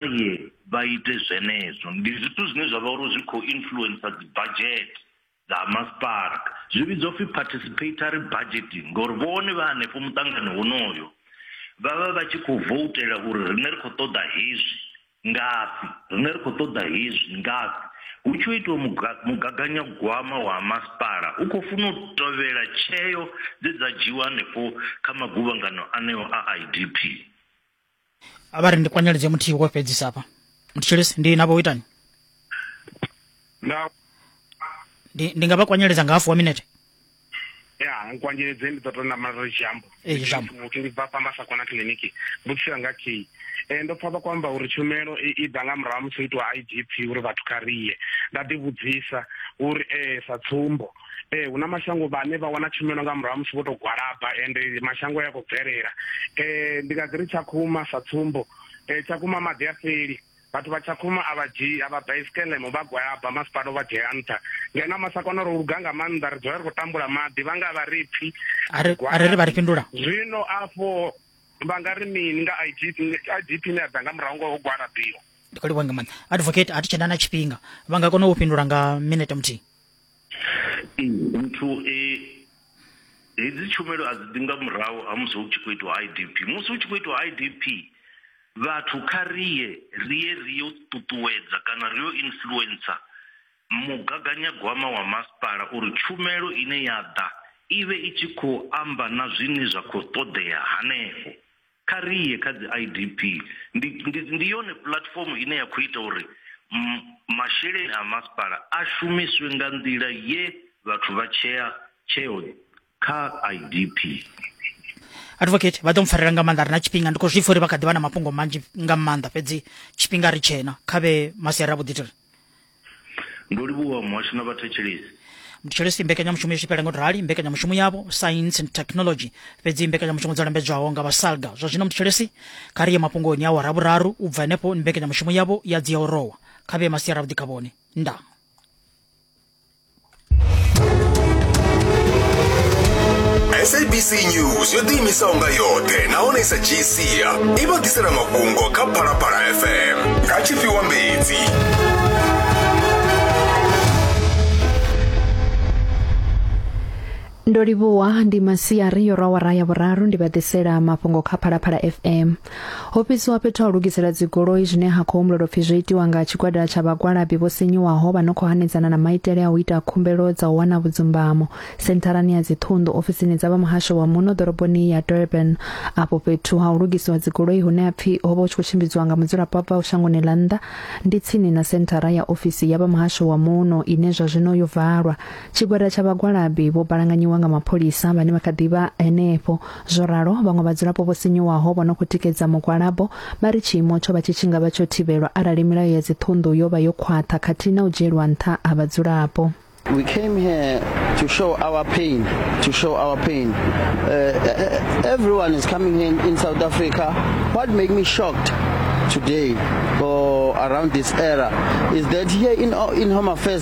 ye vha ite zwenezwo ndi zwithu zwine zwa vha uri zwi khou influencer dzi budget dza masipala zwi vhidzwa upfhi participatory budgeting ngori vhone vha hanefho muṱangano wonoyo vha vha vha tshi khou voutela uri rine ri khou ṱoḓa hezwi ngafhi rine ri khou ṱoḓa hezwi ngafhi hu tshi itiwa mugaganyagwama wa masipala u khou funa u tovhela tsheo dze dza dzhiwa hanefho kha maguvhangano aneo a idp a vha ri ndi kwanyeledze muthihi wo fhedzisa hafha mutshilisi ndi navho u itani na ndi ndi nga vha kwanyeledza nga hafu wa minete ya nkwanyeledze ndi ḓo tou namala ri jambo Ee, jambo. muthu ndi bva pamba sa kona kiliniki mbudziso yanga thi um ndo pfa vha kwamba uri tshumelo i i ḓa nga murahu ha musi ho itiwa i d p uri vhathu kha riye nda ḓivhudzisa uri um sa tsumbo ee hu na mashango vhane vha wana tshumelo nga murahu musi vho tou gwalaba ende mashango a ya khou bvelela um ndi nga ḓi ri tshakhuma sa tsumbo um tshakhuma maḓi a fheli vhathu vha tshakhuma a vha dzhii a vha bva isikelemo vha gwalaba masipala u vha dzhiela nṱha ngeno masakona ro luga nga maanḓa ri dzula ri khou tambula maḓi vha nga vha ri pfhi a ri a ri ri vha ri fhindula zwino afho vha nga ri mini nga idp idp ne ya ḓa nga murahu ngo ho gwalabiwa ndi khou livhuwa nga maanḓa advocate a thi tshena na tshifhinga vha nga kona u fhindula nga minete muthihi Nthu hedzi tshumelo a dzi ḓi nga murahu ha musi hu tshi khou itiwa I_D_P musi hu tshi khou itiwa I_D_P vhathu kha ri ye ri ye ri yo ṱuṱuwedza kana ri yo influencer mugaganyagwama wa masipala uri tshumelo ine ya ḓa i vhe i tshi khou amba na zwine zwa kho ṱoḓea hanefho Kha ri ye kha dzi IDP. Ndi, ndi, ndi yone puḽatifomo ine ya khou ita uri masheleni a masipala a shumiswe nga nḓila ye vhathu vha tshea tsheo kha IDP. Advocate, vha ḓo mpfarela nga maanḓa ri na tshifhinga ndi khou zwi pfa uri vha kha ḓi vha na mafhungo manzhi nga maanḓa fhedzi tshifhinga ri tshena kha vhe masiari a vhuḓi tiri. ndo livhuwa muhasho na vhathetshelesi muthetshelesi mbekanyamushumo yo tshipela ngo rali mbekanyamushumo yavho science and technology fhedzi mbekanyamushumo dzo lambedzwaho nga vhasalga zwa zwino muthetshelesi kha ri ye mafhungoni a wa ravhuraru u bva henefho mbekanyamushumo yavho ya dzi ya u rowa kha vhe masiara vhuḓi kha vhone nda sabc news yo ḓiimisaho nga yoṱhe nahone sa gcia i vha ḓisela mafhungo kha phalaphala fm nga tshifhiwa mbedzi ndo livhuwa ndi masiari yo rwa wara ya vhuraru ndi vha ḓisela mafhungo kha phalaphala fm ho fhedziwa fhethu ha u lugisela dzigoloi zwine ha khou humbulelwa pfi zwo itiwa nga tshigwada tsha vhagwalabi vho sinyuwaho vha no khou hanedzana na maitele a u ita khumbelo dza u wana vhudzumbamo sentharani ya dziṱhunḓu ofisini dza vha muhasho wa muno ḓoroboni ya durban afho fhethu ha u lugisiwa dzigoloi hune ha pfi ho vha hu tshi khou tshimbidziwa nga mudzulapo a bvaho shangoni ḽa nnḓa ndi tsini na senthara ya ofisi ya vha muhasho wa muno ine zwa zwino yo valwa Tshigwada tsha vhagwalabi vho balanganyiwa nga mapholisa vhane vha kha ḓi vha henefho. Zwo ralo, vhaṅwe vhadzulapo vho sinyuwaho vho no khou tikedza mugwalabo vha ri tshiimo tsho vha tshi tshi nga vha tsho thivhelwa arali milayo ya dziṱhunḓu yo vha yo khwaṱha khathihi na u dzhielwa nṱha ha vhadzulapo. We came here to show our pain, to show our pain. Uh, everyone is coming here in, in South Africa. What made me shocked today or around this era is that here in, in Home Affairs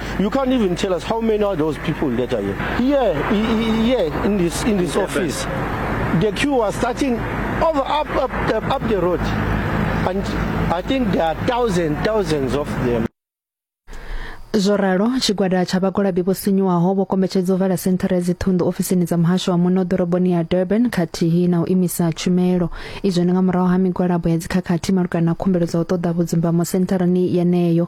You can't even tell us how many are those people that are here. Here, here in this in this office, the queue was starting over up up up, up the road, and I think there are thousands thousands of them. zwo ralo tshigwada tsha vhagwalabi vho sinyuwaho vho kombetshedza u vala senthara ya dziṱhunḓu ofisini dza muhasho wa muno ḓoroboni ya durban khathihi na u imisa tshumelo izwo ndi nga murahu ha migwalabo ya dzikhakhathi malugana na khumbelo dza u ṱoḓa vhudzumbamo sentharani yeneyo